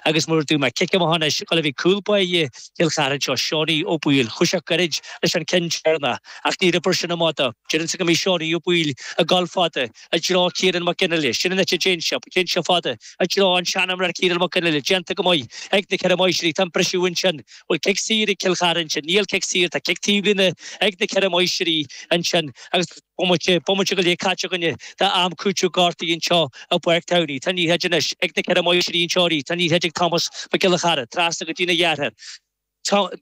agus mar dúirt mé cic amach anois chuile bhí cúl báire Chill Chartha anseo Seánie Ó Baoill chuaigh sé goirid leis an cionn deireanach ach ní raibh sin amach do. Déarfainnse go mbeidh Seánie Ó Baoill ag goil fada i dtreo Ciarán Mac Fhionnghaile. Sin an áit a dtéann seo, téann seo fada i dtreo an sean imreoir Ciarán Mac Fhionnghaile. Déanta go maith ag na ceithre Máistrí. Tá an briseadh ansin. Bhfuil cic saor ag Cill Chartha ansin? Níl cic saor. Tá cic taobhlíne ag na ceithre Máistrí ansin agus. Bomaite, bomaite go leith caite againne d'am cúitimh gortaithe anseo i bPáirc Tamhnaigh. Tá an liathróid anois ag na Ceithre Máistrí anseo arís, tá an liathróid ag Tomás Mac Giolla Chearra, trasna go dtína dheartháir,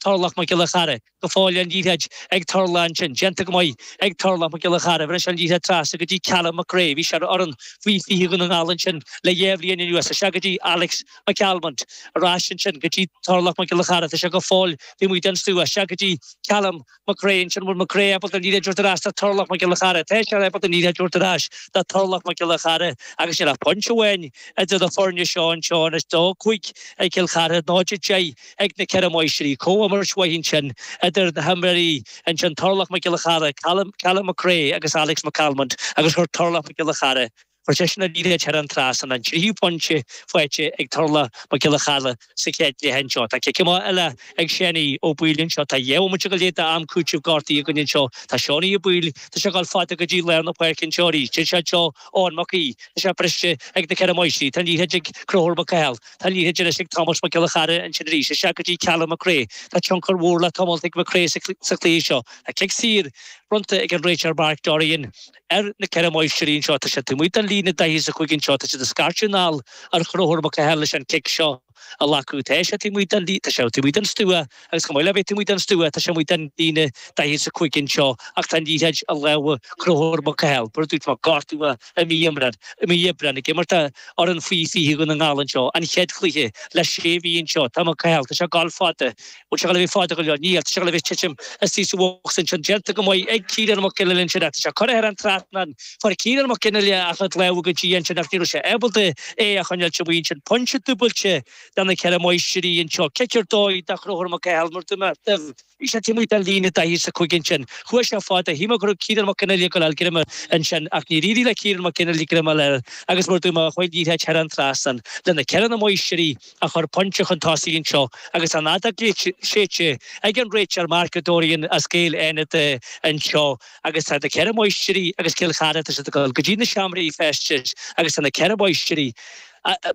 Torlach Mac Giolla Chearra, go fóill an liathróid ag Torlach ansin, déanta go maith ag Torlach Mac Giolla Chearra, anois an liathróid trasna go dtí Calum Mac Crae, bhí sé ar fhoireann faoi fiche Dhún na nGall ansin le dhá bhliain anuas, isteach go dtí Alex McCalmont, ar ais ansin go dtí Torlach Mac Giolla Chearra, tá sé go fóill taobh amuigh den stua, isteach go dtí Calum, Mac Crae ansin, An bhfuil Mac Crae ábalta an liathróid a thabhairt ar ais do Torlach Mac Giolla Chearra Tá sé ábalta an liathróid a thabhairt ar ais do Torlach Mac Giolla Chearra agus níl ach pointe amháin idir na foirne seo anseo anois, 2-5 ag Cill Chartha, 0-10 ag na Ceithre Máistrí. Comhimirt mhaith ansin idir na himreoirí ansin, Torlach Mac Giolla Chearra, Calum Mac Crae agus Alex McCalmont agus chuir Torlach Mac Giolla Chearra. Chuir sé an liathróid thar an trasnán, an tríú pointe faighte ag Torlach Mac Giolla Chearra sa chéad cluiche anseo. Tá cic amach eile ag Seanie Ó Baoill anseo. Tá dhá bhomaite go leith d'am cúitimh gortaithe againn anseo. Tá Seánie Ó Baoill, tá sé ag dul fada go dtí lár na páirce anseo arís. Téann sé anseo, Eoin Mac Aoidh, tá sé briste ag na Ceithre Máistrí. Tá liathróid ag Conchúr Mac Cathail. Tá liathróid anois ag Tomás Mac Giolla Chearra ansin arís. Isteach go dtí Callum McRae. Tá tionchar mhór le tomhailt ag McRae sa chluiche seo. Tá cic saor bronnta ag an réiteoir Mark Dorrian. Ar na ceithre Máistrí anseo, tá siad taobh amuigh den líne daichead is a cúig anseo, tá siad ag scairteadh anall ar Chonchúr Mac Cathail leis an cic seo a ghlacadh, tá sé taobh amuigh den, tá sé taobh amuigh den stua agus chomh maith le bheith taobh amuigh den stua, tá sé amuigh den líne daichead is a cúig anseo ach tá an liathróid i lámha Chonchúir Mac Cathail. Mar a dúirt mé, gortaíodh é i mí, i mí Aibreáin ag imirt d'fhoireann faoi 20 Dhún na nGall anseo, an chéad chluiche le sé mhí anseo, tá Mac Cathail, tá sé ag goil fada, Bhfuil sé ag goil a bheith fada go leor. Níl, tá sé ag goil a thitim istigh sa bhocsa ansin. Déanta go maith ag Ciarán Mac Fhionnghaile ansin ach tá sé curtha thar an trasnán. Fuair Ciarán Mac Fhionnghaile ach an clabhar go dtí ansin ach ní raibh sé ábalta é a choinneáilt sa bhuíon sin. Pointe dúbailte do na Ceithre Máistrí anseo. Cic ar dóigh do Chonchúr Mac Cathail mar bhí sé taobh amuigh den líne daichead is a cúig ansin. Chuaigh sé fada. Shíl mé go raibh Ciarán Mac Fhionnghaile ag goil a fháil greim ansin ach níor éirigh le Ciarán Mac Fhionnghaile greim a fháil air agus mar dúirt mé, chuaigh an liathróid thar an trasnán. Le na Ceithre Máistrí. a chur pointe chun tosaigh anseo agus tá an fheadóg séidte ag an réiteoir Mark Dorrian as Gaeil Fhánada anseo agus tá na Ceithre Máistrí agus Cill Chartha, tá siad ag dul go dtí na seomraí feistis agus tá na Ceithre Máistrí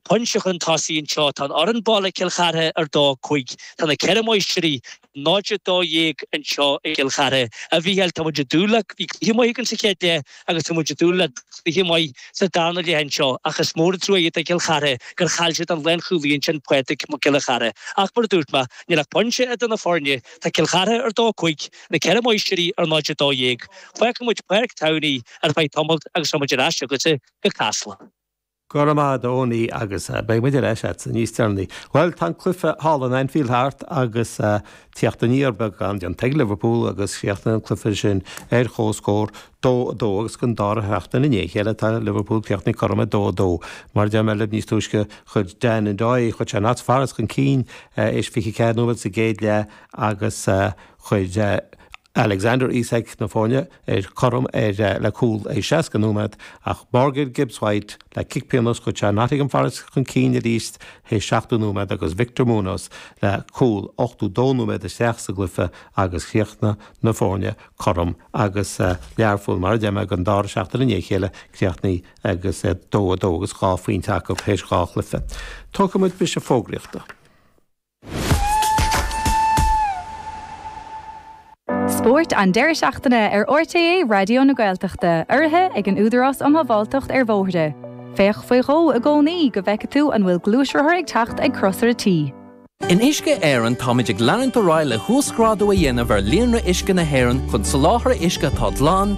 pointe chun tosaigh anseo, tá an fhoireann baile Cill Chartha ar dó, cúig, tá na Ceithre Máistrí. 0 12 anseo i gCill Chartha. A Mhícheáil, tá muid ag dúil le bhí cluiche maith againn sa chéad leath agus tá muid ag dúil le cluiche maith sa darna leath anseo ach is mór an trua é do Chill Chartha gur chaill siad an lánchúlaí ansin Pauric Mac Giolla Chearra ach mar a dúirt mé, níl ach pointe idir na foirne, tá Cill Chartha ar 2 5, Na Ceithre Máistrí ar 0 12. Fágfaidh muid Páirc Tamhnaigh ar feadh tamaill agus tá muid ar ais chugatsa go Casla. Go raibh maith agat Tony agus beidh muid ar ais agat níos deireanaí. Bhuel, tá an cluiche thall in Anfield thart agus teacht aniar beag ann déanta ag Liverpool agus chríochnaigh an cluiche sin ar chomhscór, 2, 2, agus don dara seachtain i ndiaidh a chéile tá Liverpool críochnaithe cothrom, 2, 2. Mar a deir mé libh níos túisce chuir Dan Ndoye, chuir sé Notts Forest chun cinn tar éis 24 nóiméad sa gcéad leath agus chuir Alexander Isak na foirne, cothrom le cúl ag 60 nóiméad, ach Morgan Gibbs White le cic pionós chuir sé Nottingham Forest chun cinn arís théis 70 nóiméad agus Victor Munoz le cúl 82 nóiméad isteach sa gcluiche agus chríochnaigh na foirne cothrom agus Learpholl mar a deir mé don dara seachtain i ndiaidh a chéile críochnaithe agus 2-2 agus dhá phointe acu théis dhá chluiche. Tógfaidh muid briseadh fógraíochta. Spórt an deireadh seachtaine ar RTÉ Raidió na Gaeltachta, urraithe ag an Údarás um Shábháilteacht ar Bhóithre. Féach faoi dhó i gcónaí go bhfeice tú an bhfuil gluaisrothar ag teacht ag Crosaire T. In Uisce Éireann táimid ag leanúint ar aghaidh le huasghrádú a dhéanamh ar líonra uisce na hÉireann chun soláthar uisce atá glan,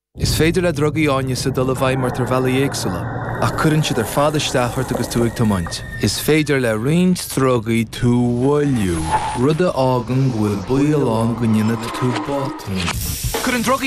Is féidir le drugaí áineasa dul i bhfeidhm ort ar bhealaí éagsúla, ach cuireann siad ar fad isteach ort agus tú ag tiomáint. Is féidir le roinnt drugaí tú a mhoilliú, rud a fhágann go bhfuil baol ann go ndéanfaidh tú botún. Cuireann drugaí